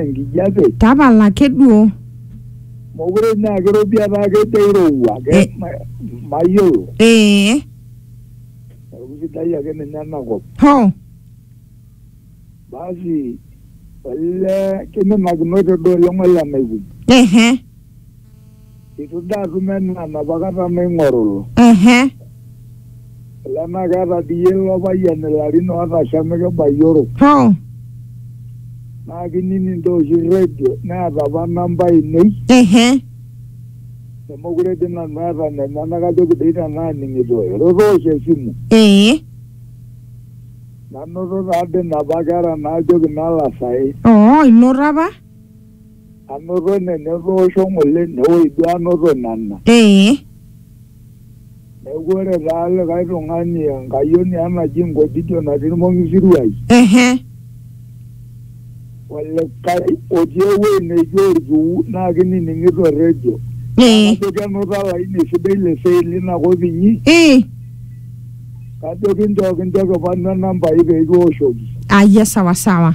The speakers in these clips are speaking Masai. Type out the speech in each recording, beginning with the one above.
enkijape tapala ake duo mokure naa kirobi etaa kejo airowua ke Eh. ma- mayiolo ee neeku sidai ake ninye enakop ho basi olee kiminakinote duo oleng ole naikuni ehe Itu daa atum enaa napa kata naing'oruru. Ehe. Olee naa keeta dii iyie ilo payian ilarin ootasham mikibayioro. Hoo. Naa kinining doi oshi redio neeta apa namba ainei. Ehe. Nemeekure dii nanu aata inenyena kajoki doi tenaaning'ito iro toosho esimu. Ee. Nanoto taa dii inapa kera naajoki nalo asae. Oo inoto apa? Anoto nena etoosho ng'ole newoi duo anoto nena. Ee. Neeku ore taa likae tung'ani enkayioni ang' naji Nkojijo natii Ilmong'isiruai. Ehe. Olikae otii ewuei neijo Olkiu naa kinining'ito rredio. Ee. Naa kajo kenuta olaini sidai le Sei lina kop inyi. Ii. Kajo kinchoo kincho kipanu enambai pee kiwoshoki. Ayia sawasawa.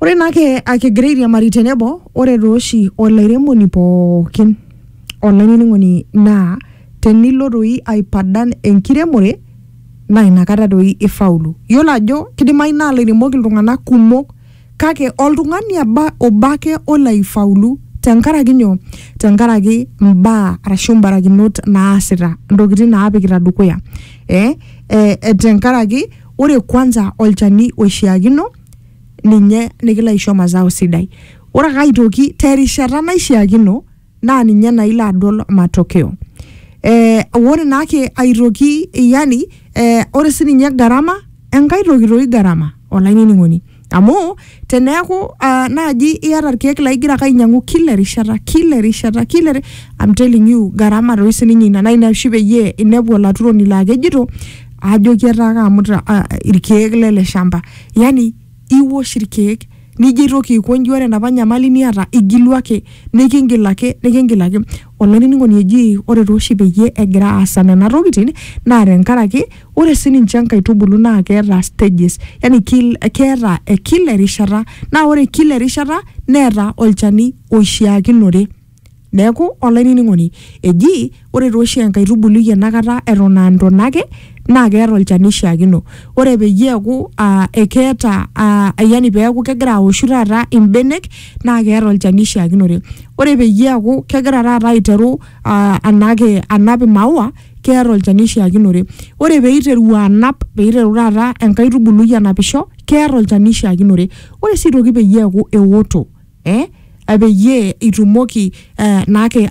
Ore naa ke akigira airiamari tenebo, ore tooshi olairemoni pookin olainining'oni naa tenilo doi aipadan enkiremore naa inakata doi ifaulu. Yiolo ajo kidimayu naa ilairemok iltung'anak kumok kake oltung'ani aba obo ake olo aifaulu tenkaraki nyoo? Tenkaraki imbaa arashu imbarakinot naasita, intokiting naapikita dukuya eh tenkaraki ore kwanza olchani oishiakino ninye likilo aisho mazao sidai ore ake aitoki terishata naishiakino naa ninye naa ilo adol matokeo eh, ore naake aitoki yani eh, ore sininye gharama enkae toki toi gharama olainining'oni amu teneeku uh, naaji iyata irkeek laa igira ake ainyiang'u kila erishata kila erishata kila eri- I'm telling you gharama toi sininye ina naa ina oshi peyie inepu olaturoni laa kejito ajoki etaa kaamuta uh, irkeek lele shamba yani iwosh irkeek nijo aitoki aikonji ore enapa nyamali niata igilu ake nikingil ake nikingil ake olainining'oni eji ore tooshi peyie egira aasa nena tokitin naa tenkaraki Ore sii ninche nkaitubulu naa keeta stages, yani kil, keeta eh, kila erishata naa ore kila erishata neeta olchani oishiakinore. Neeku olainining'oni eji ore taa oshi enkaitubului enakata eton aa ntona ake naa keeta olchani oishiakino. Ore peyie eeku aa ekeeta aa yani peeku kegira aoshu taata imbenek naa keeta olchani oishiakinore. Ore peyie eeku kegira taata aiteru aa anaake anap imaua keeta olchani oishiakinore ore peiteru anap peiteru taata enkaitubului anapisho keeta olchani oishiakinore ore sii aitoki peyie eeku ewoto eh, peyie itumoki eh, naake ai